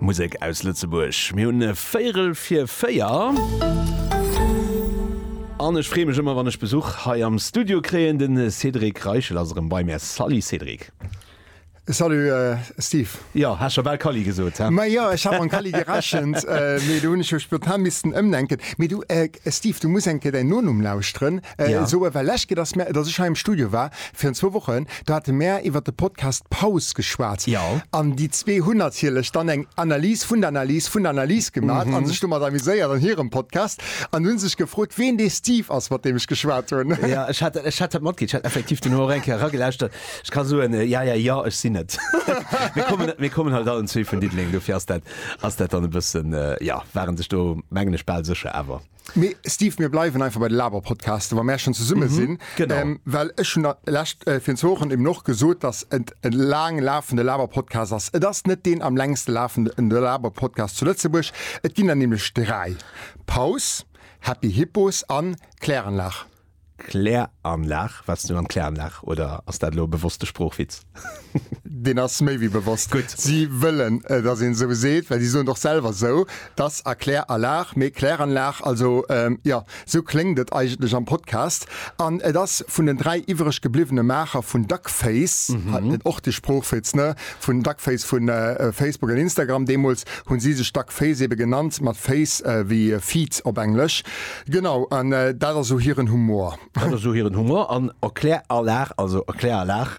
Musek aus Lëtzebuerg. Mir hunn e Véierel fir véier. An ech freeë mech ëmmer, wann ech Besuch hei am Studio kréien. De Cédric Reichel ass erëm bei mär. Salut Cédric. Salut Steve. Jo, hat scho bal Calli gesot, he? Ma jo, ech hat mam Calli gerechent, mee do hunn ech jo spontan missten ëmdenken. Mee du Steve, du muss eng Kéier däin Nonumm lauschteren. Ja. Esou ewell lech gëtt, dass mär, dass ech hei am Studio war virun zwou Wochen, do hate mär iwwert de Podcast Paus geschwat. Ja. An déi zwee hunn natierlech dann eng Analys vun der Analys vun der Analys gemaach a sech domat amuséiert an hirem Podcast an hunn sech gefrot, wien dee Steve ass, mat deem ech geschwat hunn. Ja, ech hat, ech hat dat matkritt. Ech hat effektiv duerno och eng Kéier eragelauschert. Ech ka soen, äh, ja, ja, ja, ech sinn et. Mir kommen, mir kommen halt allen zwee vun Diddeleng, dofir ass dat, ass dat dann e bëssen, äh, ja, ware sech do, mengen ech, bal sécher. Awer. Mee Steve, mir bleiwen einfach bei de Laberpodcasten, wa mär schonn zesumme sinn. Genau. Well ech hunn lescht, virun zwou Wochen eben och gesot, dass et e laang lafende Laberpodcast ass. Et ass net deen am längste lafende Laberpodcast zu Lëtzebuerg. Et ginn der nämlech dräi, Paus, Happy Hippos an Kläranlage. Kläranlag, Waars du an d'Kläranlag oder ass dat elo e bewosste Sproochwitz? Deen ass méi wéi bewosst. Gutt. Si wëllen, dass een esou seet, well si soen et och selwer esou, et ass a Klär a Lag, mee Kläranlag. Also, jo, esou kléngt et eigentlech am Podcast. An et ass vun den dräi iwwereg gebliwwene Maacher vun Duckface, och de Sproochwitz, ne, vun Duckface vu Facebook an Instagram, deemools hu si sech Duckface ebe genannt, mat face wéi Feed op Englesch. Genau, an dat ass o hiren Humor. Dat ass o hiren Humor, an Erkläralag, also Erkläralag,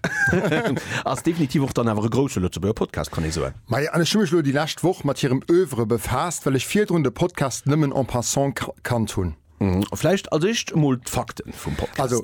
ass definitiv och dann awer e grousse Lëtzebuerger Podcast, kann ee soen. Majo, an ech hu mech elo déi lescht Woch mat hirem Oeuvre befaasst, well ech virdrun de Podcast nëmmen en passant kannt hunn. Vläicht als éischt emol d'Fakte vum Podcast. Also,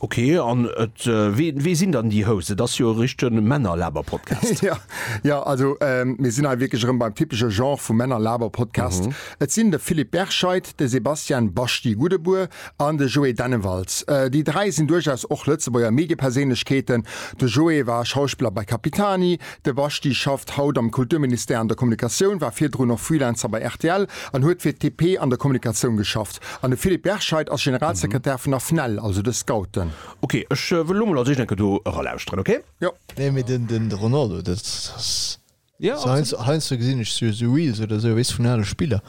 Ok, an et wee wee sinn dann déi House? Et ass jo e richte Männerlaberpodcast. Jo, jo, also mir sinn hei wierklech erëm beim typesche Genre vu Männerlaberpodcast. Et sinn de Philippe Berscheid, de Sebastian Baschti Gudebuer an de Joé Dennewalz. Déi dräi sinn duerchaus och Lëtzebuerger Medieperséinlechkeeten. De Joé war Schauspiller bei Capitani, de Baschti schafft haut am Kulturministère an der Kommunikatioun, war virdrun och Freelancer bei rtl an huet fir TP an der Kommunikatioun geschafft. Just. An de Philippe Berscheid ass Generalsekretär vun der FNEL, also de Scouten. Ok, ech wëll lo mol als éischt enke do eralauschteren, ok? Jo. Nee mee den den Ronaldo dat ass Jo absolut. Heiansdo gesinn ech sou sou Reels oder sou weess vun ale Spiller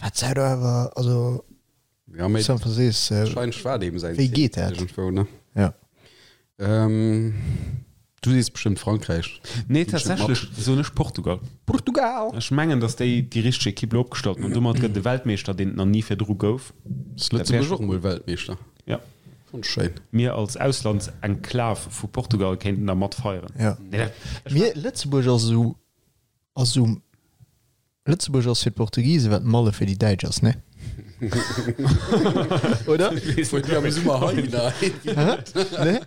wat säi do awer also Ja mee Sympa sees wahrscheinlech war et eben säin wéi Ziel geet dat? iergendwou ne? Ja. Ähm, du sees bestëmmt Frankräich. Nee, tatsächlech soen ech Portugal. Portugal! Ech mengen, datt déi déi richteg Ekipp elo opgestallt hunn an domat gëtt e Weltmeeschter, deen et nach ni virdru gouf. Ass Lëtzebuerg och emol Weltmeeschter? Jo. Schonn schéin. Mir als Auslandsenklav vu Portugal kéinten da mat feieren. Jo. Mir, Lëtzebuerg ass esou, ass esou. Lëtzebuerg ass fir d'Portugisen, wat Malle fir déi Däitsch ass, ne? Oder? Ne?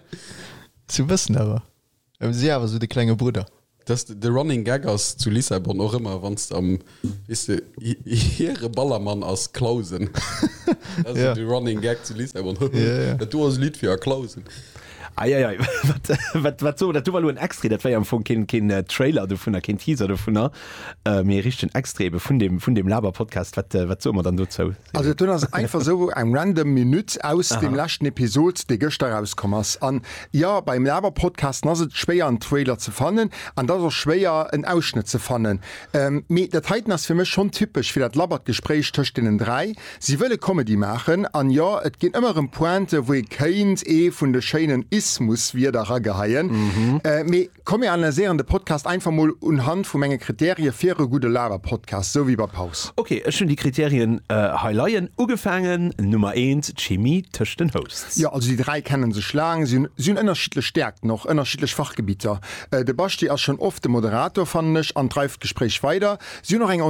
Zu bëssen awer. Si awer esou de klenge Brudder. Dass de Running Gag ass zu Lissabon och ëmmer, wann s de am, weess de, hire Ballermann ass Clausen. Dat ass esou de Running Gag zu Lissabon, Hëhö, dat do ass e Lidd fir a Clausen. Eieiei, wat, wat soe mer, dat do war elo en Extrait, dat war jo am Fong keen, keen Trailer dovunner, keen Teaser dovunner, mee e richtegen Extrait ebe vun deem, vun deem Laber-Podcast. Wat, wat soe mer dann dozou? Also do ass einfach esou eng random Minutt aus deem leschten Episod, dee gëschter erauskomm ass. An jo, beim Laber-Podcasten ass et schwéier en Trailer ze fannen, an et ass och schwéier en Ausschnëtt ze fannen. Mee dat heiten ass fir mech schonn typesch fir dat labbert Gespréich tëscht deenen dräi. Si wëlle Comedy maachen, an jo, et ginn ëmmer erëm Pointen, wou ee kéint ee vun de schéinen Ismuswierder erageheien, mee komm mir analyséieren de Podcast einfach mol unhand vu menge Kritärie fir e gudde Laberpodcast, esou wéi bei Paus. Ok, ech hunn déi Kriterien hei leien. Ugefaangen, Nummer eent, d'Chimie tëscht den Hosts. Jo, also déi dräi kenne sech laang. Si hunn ënnerschiddlech Stäerkten, och ënnerschiddlech Fachgebitter. De Basti ass schonn oft de Moderator, fannen ech, an dreift d'Gespréich weider. Si hunn och eng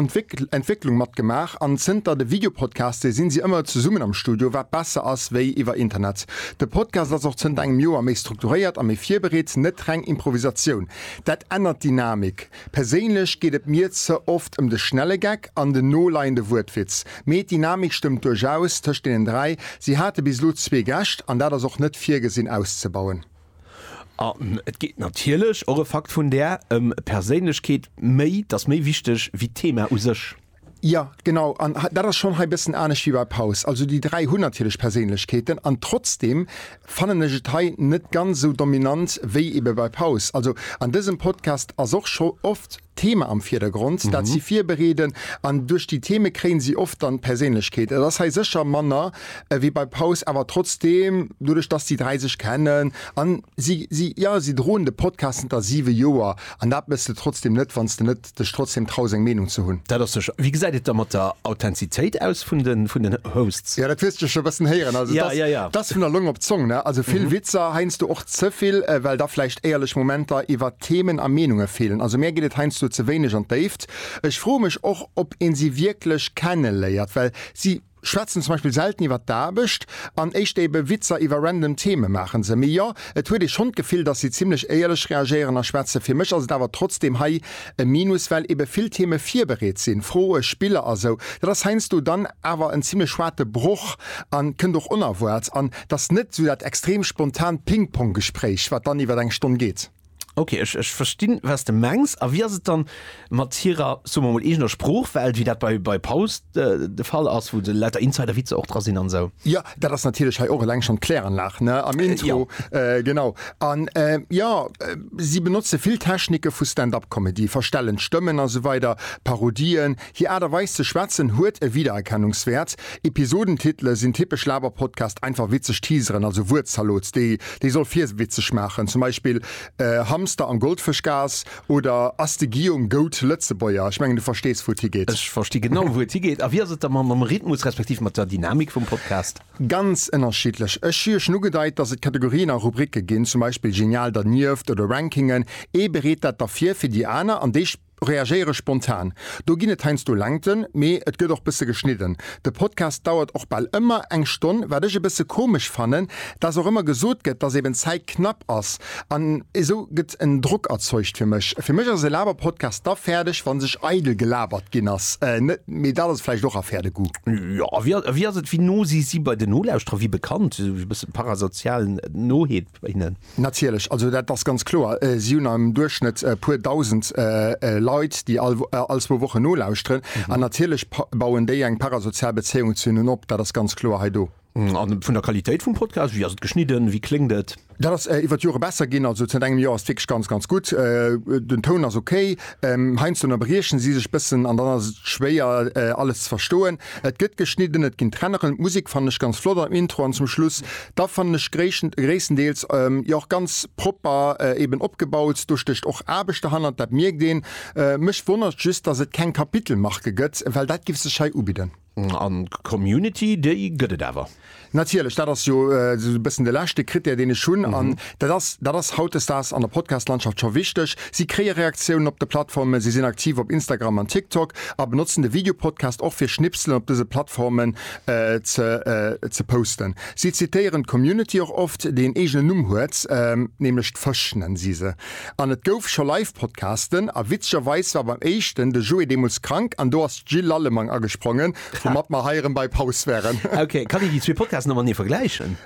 Entwécklung mat gemaach an zënter de Videopodcaste sinn si ëmmer zesummen am Studio, wat besser ass wéi iwwer Internet. De Podcast ass och zënter engem Joer méi strukturéiert a méi virbereet, net reng Improvisatioun. Dat ännert d'Dynamik. Perséinlech geet et mir ze oft ëm de schnelle Gag an den noleiende Wuertwitz. Mee d'Dynamik stëmmt duerchaus tëscht deenen dräi. Si hate bis elo zwee Gäscht an dat ass och net virgesinn auszebauen. An et geet natierlech, och e Fakt vun där, ëm Perséinlechkeet, méi, dass méi wichteg wéi d'Thema u sech. Jo, genau. An dat ass schonn hei e bëssen anescht wéi bei Paus. Also déi dräi hunn natierlech Perséinlechkeeten. An trotzdem fannen ech et hei net ganz esou dominant wéi ebe bei Paus. Also an dësem Podcast ass och scho oft. Thema am Virdergrond, dat si virbereeden, an duerch déi Theme kréien si oft dann d'Perséinlechkeet. Et ass hei sécher manner wéi bei Paus, awer trotzdeem, doduerch datt déi dräi sech kennen a si, si, jo, si droen de Podcast zënter siwe Joer an dat mëss de trotzdeem net, wann s de net dech trotzdeem traus eng Meenung ze hunn. Dat ass sécher. Wéi gesäit et da mat der Authentizitéit aus vun den, vun den Hosts? Jo, dat hues de scho e bëssen héieren. Also et Ja, ass, ja, ja. et ass vun der Long op d'Zong, ne? Also vill Witzer, heiansdo och ze vill, well da vläicht éierlech Momenter iwwer. Themen a Meenunge feelen. Also mär geet et heiansdo ze wéineg an d'Déift. Ech froe mech och, ob ee si wierklech kenneléiert, well si schwätzen zum Beispill selten iwwer d'Aarbecht an éischter ebe Witzer iwwer random Theme maache se. Mee jo, et huet ee schonn d'Gefill, dass si zimmlech éierlech reagéieren a schwätzen. Fir mech ass et awer trotzdeem hei e Minus, well ebe vill Theme virbereet sinn, Froe, Spiller a sou. Dat ass heiansdo dann awer en zimmlech hoarte Broch a kënnt och onerwaarts. An Et ass net esou dat extrem spontant Ping-Pong-Gespréich, wat dann iwwer eng Stonn geet. Ok, ech verstinn, wat s de mengs. A wéi ass et dann mat hirer, soe mer mol, eegener Sproochwelt, wéi dat bei Paus de Fall ass, wou lauter Insider-Witzer och dra sinn an esou? Jo, dat ass natierlech hei och eleng schonn d'Kläranlag am Intro. Genau. An jo, si benotze vill Technike vu Stand-Up-Comedy, verstellen d'Stëmmen a sou weider, Parodien. Hir Aart a Weis ze schwätzen huet e Wiedererkennungswäert. Episodentitele sinn typesch Laberpodcast, einfach witzeg Teaseren, also Wuertzalot, déi déi soll virwitzeg maachen, zum Beispill Hamster an Goldfëschgaass oder Ass de Guillaume Gout Lëtzebuerger? Ech mengen, du verstees, wou et higeet. Ech versti genau, wou et higeet. A wéi ass et da mam Rhythmus respektiv mat der Dynamik vum Podcast? Ganz ënnerschiddlech. Ech hu jo schonn ugedeit, dass et Kategorien a Rubricke ginn, zum Beispill Genial dernieft oder Rankingen. Ee bereet dat da vir fir déi aner an déi. Reagéiere spontan, do ginn et heiansdo Längten, mee et gëtt och bësse geschnidden. De Podcast dauert och bal ëmmer eng Stonn, wat ech e bësse komesch fannen, dass och ëmmer gesot gëtt, dass eben d'Zäit knapp ass an esou gëtt en Drock erzeugt fir mech. Fir mech ass e Laberpodcast da fäerdeg, wa sech eidel gelabert ginn ass, net? Mee dat ass vläicht och Affaire de goût. Jo, a wéi ass et, wéi no si si bei den Nolauschterer? Wéi bekannt, e bësse parasozial no hinnen? Natierlech, also dat ass ganz kloer. Si hunn am Duerchschnëtt e puer Dausend Leit, déi all zwou Wochen nolauschteren. An natierlech bauen déi eng parasozial Bezéiung zu hinnen op. Dat ass ganz kloer hei do. A vun der Qualitéit vum Podcast, wéi ass et geschnidden, wéi kléngt et? Dat ass iwwer d'Jore besser ginn. Also zënter engem Joer ass et wierklech ganz, ganz gutt. Den Toun ass ok. Heiansdo ënnerbriechen si sech e bëssen an dann ass et schwéier, alles ze verstoen. Et gëtt geschnidden, et ginn Trenneren. D'Musek fannen ech ganz flott am Intro an zum Schluss. Da fannen ech gréisstendeels jo och ganz propper eben opgebaut. Do stécht och Aarbecht derhannert, dat mierkt een. Mech wonnert just, dass et keng Kapitelmarke gëtt, well dat giff sech hei ubidden. An d'Community, déi gëtt et awer? Natierlech, dat ass jo esou e bëssen de leschte Krittär, deen ech hunn. An dat ass, dat ass hautdesdaags an der Podcast-Landschaft scho wichteg. Si kréie Reaktiounen op de Plattformen, si sinn aktiv op Instagram an TikTok a benotzen de Videopodcast och fir Schnipselen op dëse Plattformen ze posten. Si zitéieren d'Community och oft, déi en eegenen Numm huet, nämlech d'Fësch nennen si se. An et gouf scho Live-Podcasten a witzegerweis war beim éischten de Joé deemools krank an do ass d'Jill Lallemang agesprongen, woumat mer hei erëm bei Paus wären. Ok, kann een déi zwee Podcasten noenee vergläichen?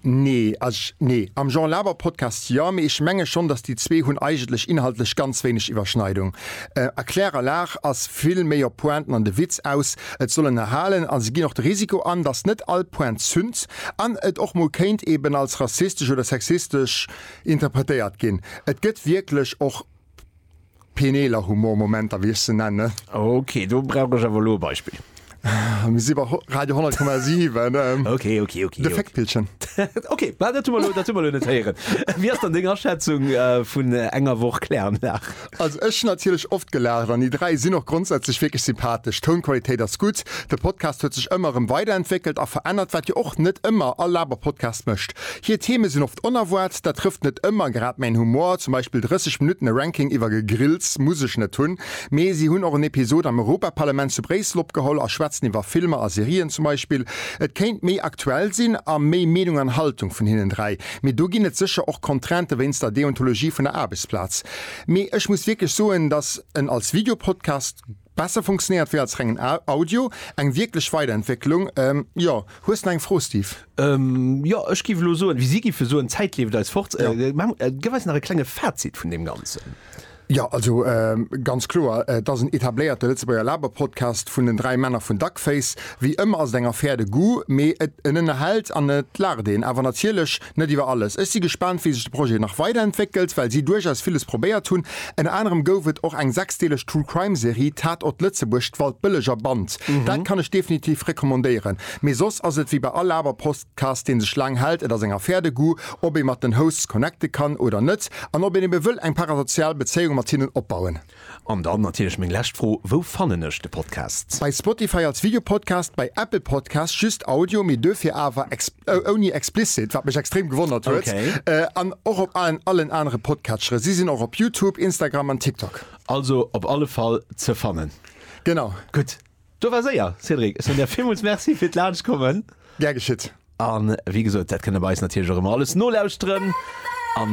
Nee, also nee, am Jean Laber Podcast jo, mee ech menge schonn, datt déi zwee hunn eigentlech inhaltlech ganz wéineg Iwwerschneidung. A Claire a Laach ass vill méi op Pointen an de Witz aus. Et soll ënnerhalen a se ginn och de Risiko an, datt net all Point zünnt an et och mol kéint eben als rassistesch oder sexistesch interpretéiert ginn. Et gëtt wierklech och Peneeler Humor Momenter, wéi ech se nennen. Ok, do brauch ech awer elo e Beispill. Mir si bei Radio 10,7. Ok, ok, ok. De Féckpillchen. Ok, mä dat hu mer elo, dat hu mer elo net héieren. Wéi ass dann deng Aschätzung vun enger Woch Kläranlag? Also ech hunn natierlech oft gelaacht an déi dräi sinn och grondsätzlech wierklech sympathesch. D'Tounqualitéit ass gutt. De Podcast huet sech ëmmer erëm weiderentwéckelt a verännert, wat jo och net ëmmer all Laber-Podcast mécht. Hir Theme sinn oft onerwaart, dat trëfft net ëmmer grad mäin Humor, zum Beispill 30 Minutten e Ranking iwwer Gegrills muss ech net hunn, mee si hunn och en Episod am Europaparlament zu Bréissel opgeholl a schwätzen iwwer Filmer a Serien zum Beispill. Et kéint méi aktuell sinn a méi Meenung an Haltung vun hinnen dräi, mee do ginn et sécher och Contraintë wéinst der Deontologie vun der Aarbechtsplaz. Mee ech muss wierklech soen, datt en als Videopodcast. Besser funktionéiert wéi als rengen Audio, eng wierklech Weiderentwécklung. Jo, hues de nach eng Fro, Steve? Jo, ech giff elo soen, wéi si giffe soen, d'Zäit leeft eis fort. Geff eis nach e klenge Fazit vun deem Ganzen. Jo, also ganz kloer, et ass en etabléierte Lëtzebuerger Laber-Podcast vun den dräi Männer vun Duckface. Wéi ëmmer ass et eng Affaire de goût, mee et en ënnerhält an et laacht een, awer natierlech net iwwer alles. Ech si gespaant, wéi sech de Projet nach weiderentwéckelt, well si duerchaus villes probéiert hunn. Ënner anerem gouf et och eng sechsdeeleg True Crime Serie Tatort Lëtzebuerg, d'Waldbëlleger Band. Dat kann ech definitiv recommandéieren. Mee soss ass et wéi bei all awer Postcast, dee sech laang hält. Et ass eng Affaire de goût, ob ee mat den Hosts connecte kann oder net an ob een ebe wëll eng parasozial Bezéiung mat hinnen opbauen. An dann natierlech meng lescht Fro, Wou fannen ech de Podcast? Bei Spotify als Videopodcast, bei Apple Podcasts just Audio, mee duerfir awer ouni explicit, wat mech extrem gewonnert huet, an och op allen anere Podcatchere. Si sinn och op Youtube, Instagram an TikTok. Also op alle Fall ze fannen. Genau. Gutt, do war séier. Cédric, ech soen der villmools Merci fir d'Laanschtkommen. Gär geschitt. A wéi gesot, dat kënnt der bei eis natierlech och ëmmer alles nolauschteren.